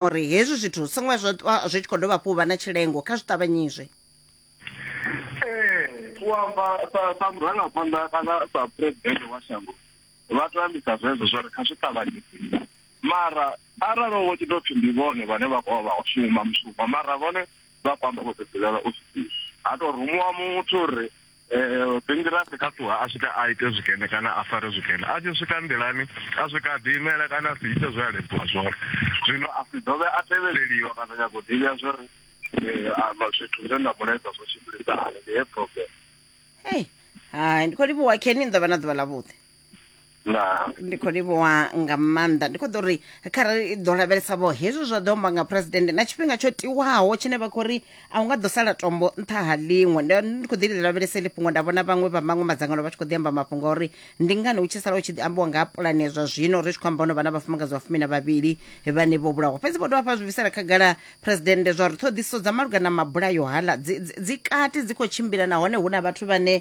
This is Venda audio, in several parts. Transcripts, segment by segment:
uri hezwi zwithu zwi songo zwa ṱwa zwi tshi khou dovha hafhu vha na tshilengo kha zwi ṱavhanyizwe ee u amba sa murangaphanḓa kana sa president wa shango vha to ambisa zwezwo zwa ri kha zwi ṱavhanyise mara arali wo tshi tou pfhi ndi vhone vhane vha khou vha shuma mushumo mara vhone vha kwamba vho ṱoḓelela u sisi ha tou rumuwa muthu uri Eh, Pingirasi kha ṱuha a swika a ite zwikene kana a fare zwikene a tshi swika nḓilani a swika a ḓiimela kana a si ite zwe a ledziwa zwone zwino a si dovhe a tevheleliwa kana nyago u ḓivha zwo ri eh, amba zwithu zwe nda mu ledza zwo tshimbilisa hani ndi he problem Hey, hai ndi khou livhuwa kheni ni ḓo vha na ḓuvha ḽavhuḓi na ndi khou livhuwa nga maanḓa ndi khou ḓo ri kharali i ḓo lavhelesa vho hezwi zwa ḓo amba nga president na tshifhinga tsho tiwaho tshine vha khou ri a hu nga ḓo sala tombo nṱha ha ḽiṅwe Ndi- ndi khou ḓi ḽi lavhelesa iḽi fhungo nda vhona vhaṅwe vha maṅwe madzangano vha tshi khou ḓi amba mafhungo a uri ndi ngani hu tshi sala hu tshi ḓi ambiwa nga ha pulani ya zwa zwino ri tshi khou amba ono vha na vhafumakadzi vha fumi na vhavhili vhane vho vhulawa fhedzi vho dovha fha zwi bvisela khagala president zwa uri ṱhoḓisiso dza malugana na mabulayo hala dzi- dzi dzi kati dzi khou tshimbila nahone hu na vhathu vhane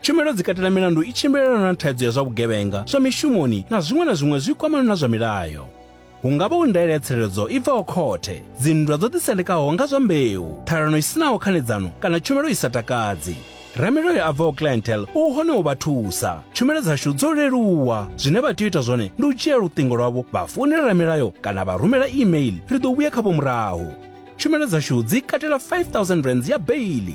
Tshumelo dzi katela milandu i tshimbilelana na thaidzo ya zwa vhugevhenga, zwa mishumoni na zwiṅwe na zwiṅwe zwi kwamana na zwa milayo. Hu nga vha hu ndaela ya tsireledzo i bvaho khothe, dzinndwa dzo ḓisendekaho nga zwa mbeu, ṱhalano i si naho khanedzano kana tshumelo i sa takadzi. Ramilayo a bvaho Clientele u hone u vha thusa. Tshumelo dzashu dzo leluwa. Zwine vha tea u ita zwone ndi u dzhia luṱingo lwavho vha founela ramilayo kana vha rumela email, ri ḓo vhuya khavho murahu. Tshumelo dzashu dzi katela R5000 ya beili.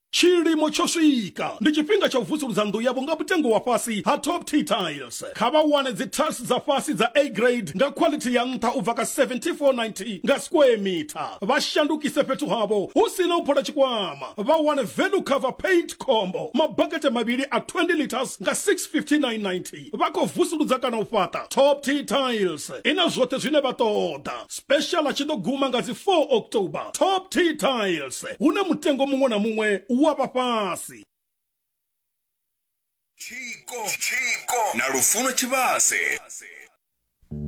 Tshilimo tsho swika, ndi tshifhinga tsha u vusuludza nnḓu yavho nga mutengo wa fhasi ha Top T Tiles. Kha vha wane dzi tiles dza fhasi dza A grade nga quality ya nṱha u bva kha 7490 nga square metre. Vha shandukise fhethu havho hu si na u phola tshikwama. Vha wane value cover paint combo, mabakete mavhili a 20 litres nga 65990. vha khou vusuludza kana u fhaṱa top t tiles i na zwoṱhe zwine vha ṱoḓa special a tshi ḓo guma nga dzi 4 october top t tiles hune mutengo muṅwe na muṅwe wa vha fhasi tshiko na lufuno tshivhase